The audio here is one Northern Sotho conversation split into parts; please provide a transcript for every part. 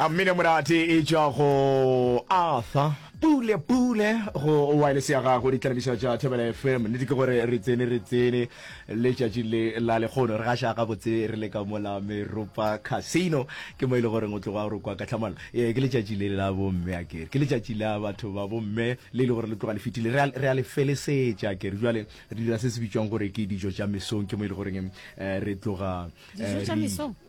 a mmine morate e tšwa go arthur pule pule go wireless ya gago ditlalebišo tša thobela fm nnete ke gore re tsene re tsene letšatši le la lekgono re gaša gabotse re le ka mola meropa casino ke mo e le goreng o tloga gore kwa ka tlhamalo ee ke letšatši le la bomme a kere ke letšatši la batho ba bomme le e le gore le tloga le fetile re a le felesetša kere jale re dira se se bitšwang gore ke dijo tša mesong ke mo e le goreng eh, re tloga eh,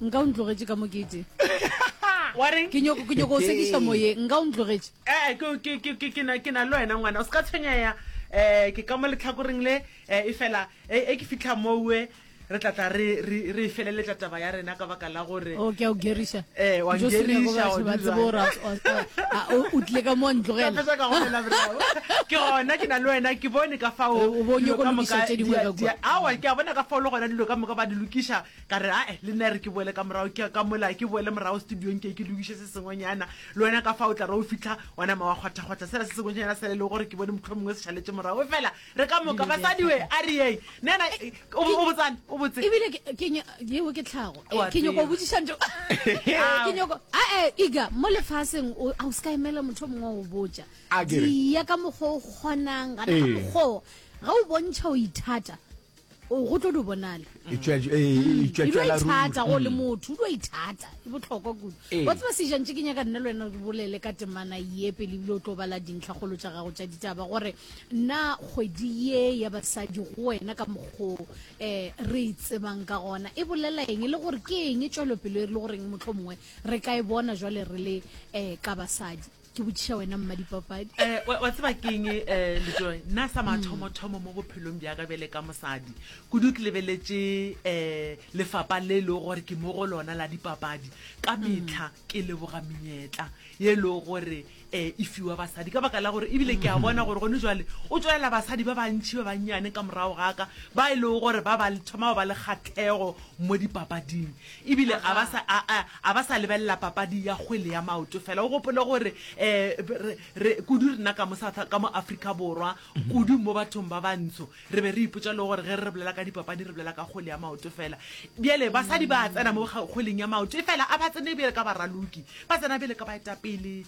nka o ntlogetše ka mokete ke nyoko o sekiša moyeng nka o ntlogetše ee eh, ke na le wena ngwana o se ka tshwenyega um eh, ke ka mo letlhakoreng le eh, e fela e ke fitlha mowe re tlatla re e feleletša taba ya rena ka baka la gore o oh, ke a o geriša Eh, wa Jocelyn, ngeliša, go batho wa ba tsebe gore dira. a- a- a- a- o tlile ka mo wa Ka ntlogela fetša ka golela bravo. ke gona ke na le wena ke bone ka fao O- o bo dilo nyoko ka lokiša moka tše dingwe di- ka di- kua. awa ke a bona ka fao le gona dilo ka moka ba di lokiša ka re ae le nna e re ke boele ka morago ke ka mola ke boele morago studiong ke ke lokiše se sengwenyana le wena ka fao tla re o fitlha wa nama wa kgwathakgwatha sela se sengwenyana sele le gore ke bone motlho mongwe se šaletše morago fela re ka moka basadi we a re yei nena e, o o botsane o botse ebile ke- ke nya- yeo ke tlhago Eh, Wa ke nyoko o tseba. botsiša ntho ke nyoko ae iga mo lefaseng o- a o se ka emela motho o mongwe o botja A ke re. dia ka mokgwa o kgonang gana ka Ee. mokgwa o, ge o bontšha o ithata o go tlo do bonala e tšwetšwela e mm. tšwetšwela ruri thata go le mm. motho do ithata e botlhokwa kudu ee. wa tseba se jantše ke nyaka nna le wena re bolele ka temana ye pele ebile o tlo bala dintlha golo tša gago tša ditaba gore nna kgwedi ye ya basadi go wena ka mokgo um eh, re e tsebang ka gona e bolela eng e le gore ke eng e tšwelopelo e re le goreng motlho mongwe re ka e bona jwale re le um ka basadi ke botšiša wena mmadipapadi um wa tseba keng um eh, lejoe nna sa mathomothomo mo bophelong bjaka bjale ka mosadi kudu ke lebeletše um lefapa le e lego gore ke mo go lona la dipapadi ka metlha ke leboga menyetla ye e lego gore um e fiwa basadi ka baka la gore ebile ke a bona gore gone jale o tswelela basadi ba bantšhi ba bannyane ka morago gaka ba e lego gore ba ba thoma ba ba le kgathego mo dipapading E bile a ba sa, a, a, a ba sa lebelela papadi ya kgwele ya maoto fela. O gopole gore, um, re, re, kudu rena ka mo South, ka mo Afrika Borwa, kudu mo bathong ba bantsho, re be re ipotša le gore ge re bolela ka dipapadi re bolela ka kgwele ya maoto fela. Bjale basadi ba a tsena mo kgweleng ya maoto, efela a ba tsene bjale ka baraloki, ba tsena bjale ka baetapele,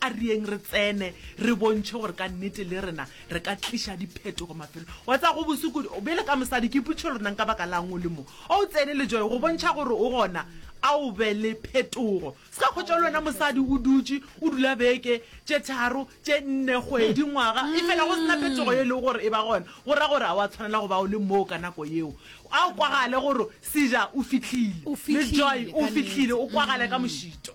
A reeng re tsene re bontšhe gore ka nnete le rena re ka tliša diphetogo mafelong. Wa tseba go bose kudu, bjale ka mosadi ke ipotšiša gore nang ka baka la'ng o le mo. A o tsene le Joy go bontšha gore o gona, a o be le phetogo. Se ka hwetša le wena mosadi o dutše, o dula beke, tše tharo, tše nne, kgwedi, ngwaga, efela go se na phetogo ye e lego gore e ba gona, go ra gore a wa tshwanela go ba o le moo ka nako yeo. A o kwagale gore Caesar o fihlile, le Joy o fihlile, o kwagale ka mošito.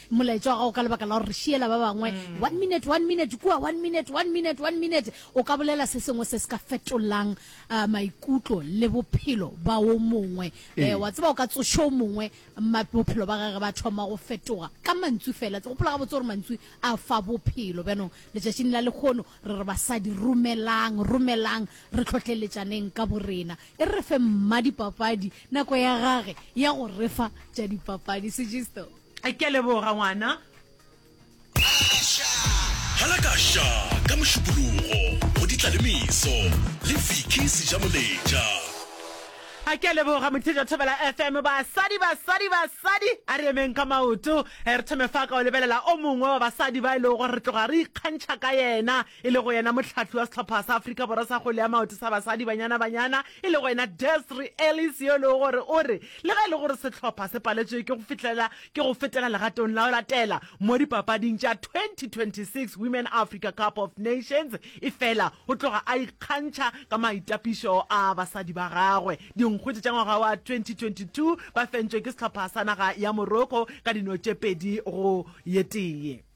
molaetša wa gago ka lebaka la gore re šiela ba bangwe mm. one minute one minute kua one minute one minute one minute o ka bolela se sengwe se se ka fetolang uh, maikutlo le bophelo ba o mongwe um wa tseba o ka tsošo o mongwe bophelo ba gage ba thoma go fetoga ka mantswi fela gopola ga botse gore mantswi a fa bophelo bjanong letšatšing la lekgono re re basadi romelang romelang re tlhotlheletšaneng ka borena e re re fe mma dipapadi nako ya gage ya go refa tša dipapadi sejisto Ke a leboga ngwana. Hala ka sha ka Mošupologo go di tla le meso le Vicky Sejamoletša. A ke a leboga Motheja Thobela FM basadi basadi basadi a re emeng ka maoto re thome fa ka o lebelela o mongwe wa basadi ba e lego gore re tloga re ikgantšha ka yena e lego yena mohlahli wa sehlopha sa Afrika Borwa sa kgwele ya maoto sa basadi Banyana Banyana, e lego yena Desri Ellis yo e lego gore o re le ge e le gore sehlopha se paletšwe ke go fihlelela ke go fetela legatong la go latela mo dipapading tša 2026 Women Africa Cup of Nations efela o tloga a ikgantšha ka maitapišo a basadi ba gagwe. Dinkgwete tša ngwaga wa 2022 ba fentšwe ke sehlopha sa naga ya Morocco ka dino tše pedi go ye tee.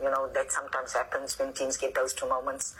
You know that sometimes happens when teams get those two moments.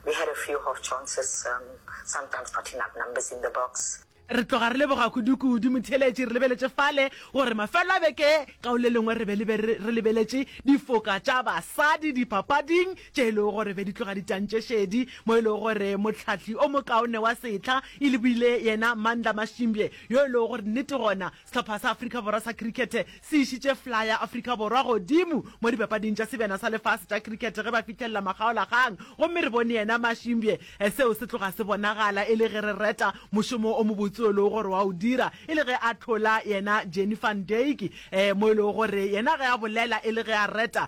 We had a few half chances, um, sometimes not enough numbers in the box. Re tloga re leboga kudu-kudu motheeletši re lebeletše fale gore mafelo a beke ka o le lengwe re be le be re lebeletše difoka tša basadi dipapading tše e lego gore be di tloga di tantše šedi mo e lego gore mohlahli o mokaone wa setlha e le buile yena Mandla Mashimbye yo e lego gore nnete gona Sehlopha sa Afrika Borwa sa Krikete se išitše fla ya Afrika Borwa godimo mo dipapading tša Sebjana sa Lefase tša Krikete ge ba fihlelela makgaolakgang gomme re bone yena Mashimbye. Seo se tloga se bonagala e le ge re reta mošomo o mobotse o e lego gore wa o dira e le ge a hlola yena Jannie van Dyk mo e lego gore yena ge a bolela e le ge a reta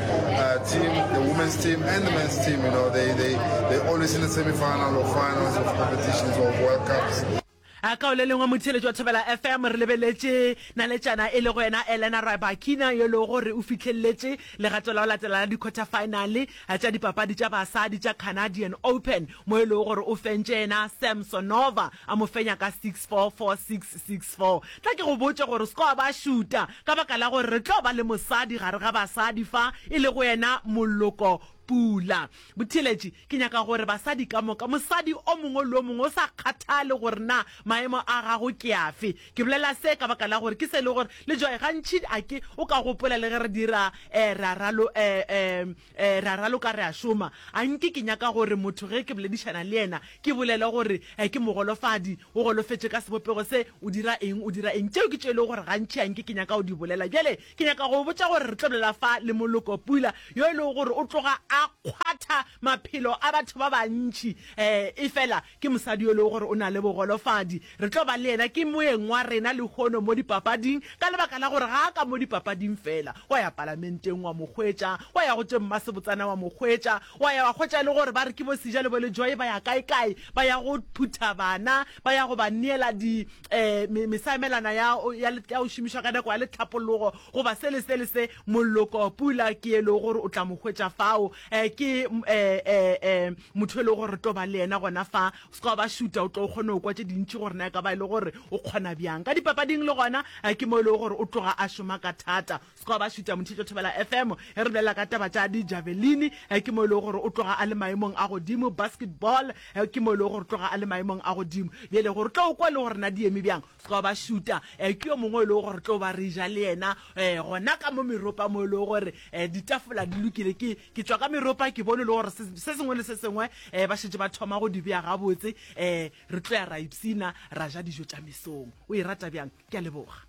Uh, team, the women's team and the men's team, you know, they, they, they're always in the semi-final or finals of competitions or World Cups. a kao le lengwe motheletši wa thobela fm re lebeletše naletšana e le go yena elena rybakina yo e lego gore o fihleleletše legato la go latela la di-quarter finale tša dipapadi tša basadi tša canadian open mo e lego gore o fentše yena sam sonova a mo fenya ka 64 46 64 tla ke go botše gore score ba šuta Ka baka la gore re tlo ba le mosadi gare ga basadi fa, e lego yena Moloko Pula. Botheeletši, Ke nyaka gore basadi ka moka, mosadi o mongwe le o mongwe, go sa kgathale gore na maemo a gago ke afe. Ke bolela se ka baka la gore ke se e lego gore le Joy gantši a ke o ka gopola le ge re dira um ra ralo um. Ee, re a raloka re a šoma. A nke ke nyaka gore motho ge ke boledišana le yena ke bolele gore ee ke mogolofadi, o golofetše ka sebopego se, o dira eng, o dira eng? Tšeo ke tšeo e lego gore gantši a nke ke nyaka go di bolela. Bjale ke nyaka go go botša gore re tlo bolela fa le moloko pula yo e lego gore o tloga a kgwatha maphelo a batho ba bantši. Ee, efela Ke mosadi yo e lego gore o na le bogolofadi. Re tlo ba le yena. Ke moeng wa rena lehono mo dipapading ka lebaka la gore ga a ka mo dipapading feela. Wa ya palamenteng wa mo hwetša, wa ya go tše mmasebotsana wa mo hwetša, wa ya wa hwetša le gore ba re ke bo Sija le bo Lejoe ba ya kae-kae, ba ya go phutha bana, ba ya go ba neela di, um mesaemelana ya, ya, ya go šomišwa ka nako ya lehlapologo goba se le se le se. Mollo Kopula ke e lego gore o tla mo hwetša fao. um ke um motho e le gore tlo ba le yena gona fa o seka ba shuta o tlo o kgone go kwa tse dintšhi gore na e ka ba e le gore o kgona bjang ka dipapading le gona um ke mo e lego gore o tloga a šoma ka thata o seka ba shuta montšhetšo thobela f m e re bolela ka taba tša dijavelini um ke mo e lego gore o tloga a le maemong a godimo basketball um ke mo e lego gore o tloga a le maemong a godimo bjele gore tlo o kwa le gore na di eme bjang Se ka ba šuta, ke yo mongwe yo e lego gore tlo ba re ja le yena gona ka mo meropa mo e lego gore ditafola di lokile. Ke ke tšwa ka meropa ke bone e le gore se sengwe le se sengwe ba šetše ba thoma go di beya gabotse. Re tlo ya ra ipshina, ra ja dijo tša mesong. O e rata bjang? Ke a leboga.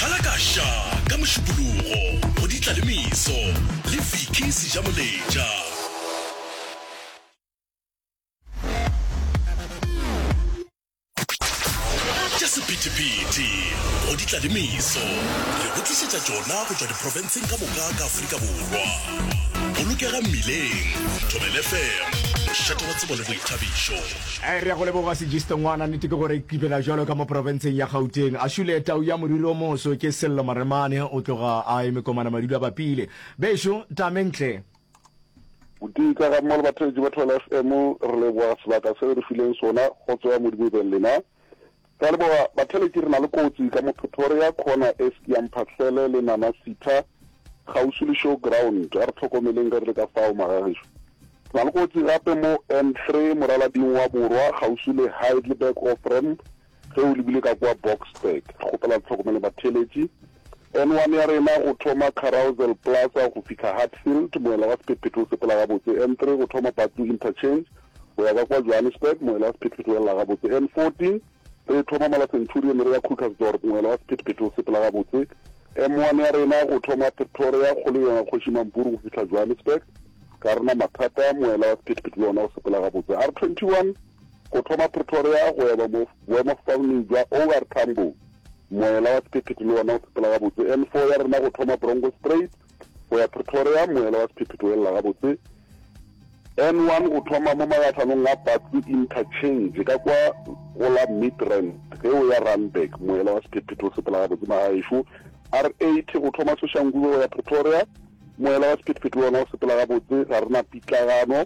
Hala ka ša ka Mošupologo go di tla le meso le Vicky Sejamoletša. tša sephethephethe go di tla le meso re go tlišetša tšona go tšwa diprofenseng ka moka ka afrika borwa bolokega mmileng thobel fm mošate wa tsebo le boithabišo Eh, re ya go leboga sejiste ngwana nnete ke gore kipela jalo ka mo porofenseng ya gauteng a šule tau ya moriri o moso ke sello maremane o tloga a eme komana madula bapile bešo tamentle Botee ka ga mma le batheletši ba Thwele FM, re leboga sebaka se le re fileng sona go tsoa Modimo e beng lena. Ra leboga batheletši re na le kotsi ka mo Pretoria khona e ski ya Mphahlele le Nana Sitha kgauswi le show ground a re tlhokomeleng ge re le ka fao magagešu. Re na le kotsi gape mo N3 moralading wa borwa kgauswi le Heidelberg Offramp Ge o lebile ka kua Boksburg, re kgopela le hlokomele batheeletši. N1 ya rena go thoma Carousel Plaza go fihla Hatfield, moela wa sephethephethe o sepela gabotse. N3 go thoma Batlu Interchange go ya ka kua Johannesburg, moela wa sephethephethe o elela gabotse. N14 re e thoma Mala Centurion re ya Krugersdorp, moela wa sephethephethe o sepela gabotse. M1 ya rena go thoma Pretoria, kgolo yona Kgoši Mampuru go fihla Johannesburg, ga re na mathata, moela wa sephethephethe le ona o sepela gabotse. R21. Go thoma Pretoria go ya boemafofaneng bja OR Tambo, moela wa sephephethe le wona o sepela gabotse. N4 ya rena go thoma Bronkhorstspruit go ya Pretoria, moela wa sephephethe o elela gabotse. N1 go thoma mo magatlhanong a Batsi Interchange ka kwa go la Midrand ge o ya Randburg, moela wa sephephethe o sepela gabotse magaešo. R80 go thoma Soshanguve go ya Pretoria, moela wa sephethephethe le wona o sepela gabotse, ga re na pitlagano.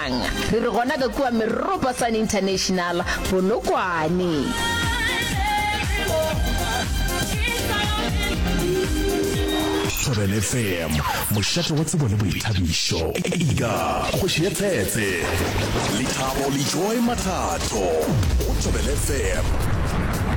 Bjang? Re re gona ka kua Meropa Sun International, Polokwane. Thobela FM, mošate wa tsebo le boithabišo. Ega, kgoši ya tshetse. Lethabo le joy mathatho. Go Thobela FM.